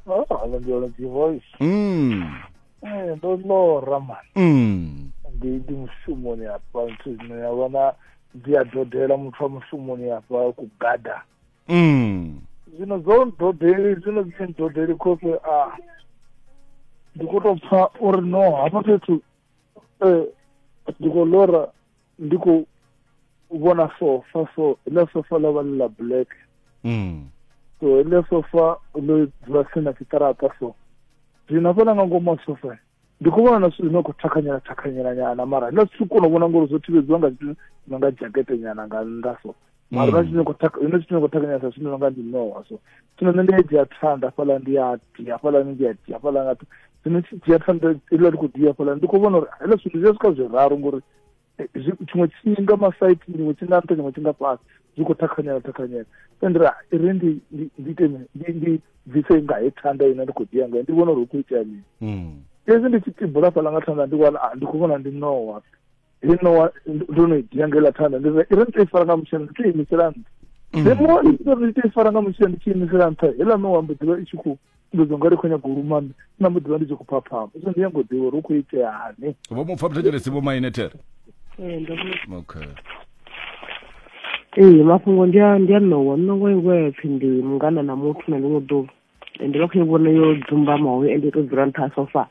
Oh, hello Ndolo G voice. Mm. Eh, ndo lora man. Mm. Ndi ndi mushumoni hapa nthu zwino ya vhona ndi a dodela muthu wa mushumoni hapa ku gada. Mm. Zwino zwo ndodeli zwino zwi ndodeli khophe a ndi kho to pfa uri no hafha fhethu eh ndi kho lora ndi khou vhona sofa so ḽa sofa ḽa vha ḽa black mm. so ḽa sofa ḽo dzula tsini na tshiṱaraṱa so zwino hafhaḽa nga ngomu ha sofa ndi khou vhona na zwithu zwine khou thakhanyela thakhanyela nyana mara nda zwithu kona u vhona ngori zwo thivhedziwa nga zwithu no nga jakete nyana nga nnḓa so mara na zwithu zwine zwithu khou thakhanyela sa zwithu no nga ndi nowa so zwino nṋe ndi a dzhia thanda hafhaḽa ndi a ti hafhaḽa ndi a ti hafhaḽa nga zwino tshi dzhia thanda iḽa ndi khou dia hafhaḽa ndi khou vhona uri heḽa zwithu zwi a swika zwiraru ngori tshiṅwe tshinga masite tshiṅwe tshinga nṱha tshiṅwe tshinga fhasi zwi khou thakhanyela thakhanyela fendira ri ndi ndi ite ndi ndi bvise nga he thanda ine ndi khou dia ngayo ndi vhona uri hu khou itea mini hmm. fhedzi ndi tshi tibula fhala nga thanda ndi wana ah, ndi khou vhona ndi nowa he nowa ndo no dia nga iḽa thanda ndi ri ndi to i fara nga mutshelo ndi to imisela nṱha hmm. ndi muṅwe ndi to i fara nga mutshelo ndi tshi imisela nṱha heiḽa nowa mbo ḓivha i tshi khou ndi zwo ngari khou nyago u luma na mu ḓivha ndi tshi khou phaphama so ndi nyago ḓivha uri u khou itea hani vho mu pfa muthetshelesi vho maine there okay ee mafhungo ndi a ndi a ṋowa ṋowa iwe pfhi ndi mungana na muthu na ḽiṅwe ḓuvha ende vha khou vhona yo dzumbamaho ende to dzula nṱha sofa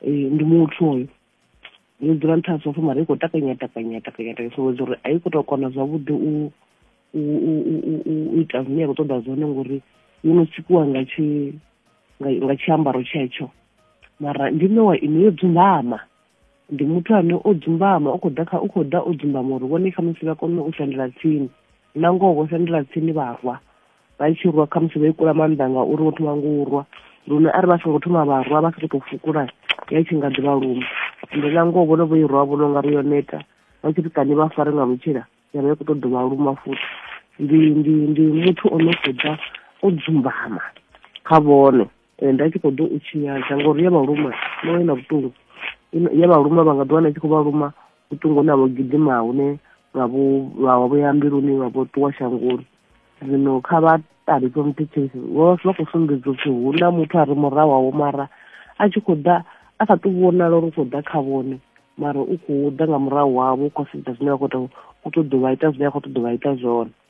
ee ndi muthu hoyo yo dzula nṱha sofa mara i khou takanya takanya takanya takanya so uri a i khou tou kona zwavhuḓi u u ita zwine ya khou ṱoḓa zwone ngori yo no sikiwa nga tshi nga tshiambaro tshetsho mara ndi nowa ine yo dzumbama ndi muthu ane o dzumbama u khou ḓa kha u khou ḓa o dzumbama uri vhone khamusi vha kone u sendela tsini na ngoho vho sendela tsini vharwa vha tshi rwa khamusi vha ikula maanḓa nga uri vho thoma ngo u rwa lune arali vha songo thoma vha rwa vha sa tou fukula ya tshi nga ḓivha lumu ende na ngoho vhone vho i rwa vhono nga ri yo neta vha tshi ri kani vha fare nga mutshila ya vha i khou tou dovha luma futhi ndi ndi ndi muthu o no khou ḓa o dzumbama kha vhone eh, nda tshi khou ḓo u tshinyadza ngori ya vhaluma noyo na vhuṱungu ya vhaluma vha nga ḓi wana i tshi khou vhaluma vhuṱungu hune ha vho gidima hune vha vho vha vho ya mbiluni vha vho ṱuwa shangoni zwino kha vha ṱali from teachers vha vha khou sumbedza upfhi hu na muthu a re murahu wawo mara a tshi khou ḓa a sa tou vhonala uri u khou ḓa kha vhone mara u khou ḓa nga murahu wavho u khou sedza zwine vha khou tou u ṱoḓa u vha ita zwine a khou ṱoḓa u vha ita zwone